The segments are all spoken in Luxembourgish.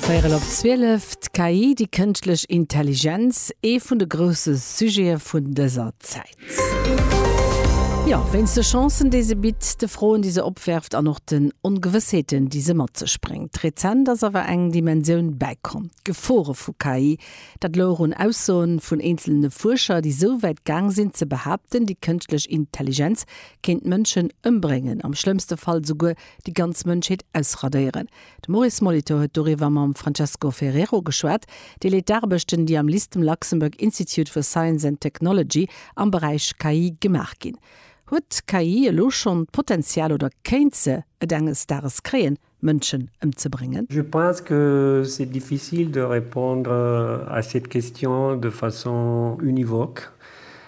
Véirel op zwielef, D'KI, déi kënschtlech Intelligenz, ee vun de grousse Sujete vun dëser Zäit. Jo, wéinst de Chancen, déi se bitt, de Froen, déi se opwäerft an och den Ongewëssheeten, déi se mat sech bréngt. Rezent ass awer eng Dimensioun bäikomm, d'Gefore vu KI. Dat louch un Aussoe vun eenzelne Fuerscher, déi esou wäit gaang sinn, ze behaapten, déi kënschtlech Intelligenz kéint Mënschen ëmbréngen, am schlëmmste Fall esouguer déi ganz Mënschheet ausradéieren. De Maurice Molitor huet doriwwer mam Francesco Ferrero geschwat, dee leet d'Aarbechten, déi am LISTM, Luxembourg Institute for Science and Technology, am Beräich KI gemaach ginn. Huet d'KI elo schonn d'Potenzial oder kéint se et enges Dages kréien, Mënschen ëmzebréngen? Je pense que c'est difficile de répondre à cette question de façon univoque.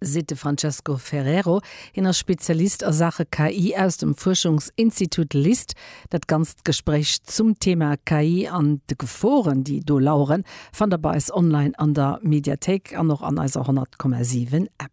seet de Francesco Ferrero. Hien ass Spezialist a Saache KI aus dem Fuerschungsinstitut LIST. Dat ganzt Gespréich zum Thema KI an de Geforen, déi do laueren, fannt der bei eis online an der Mediathéik an och an eiser 100,7 App.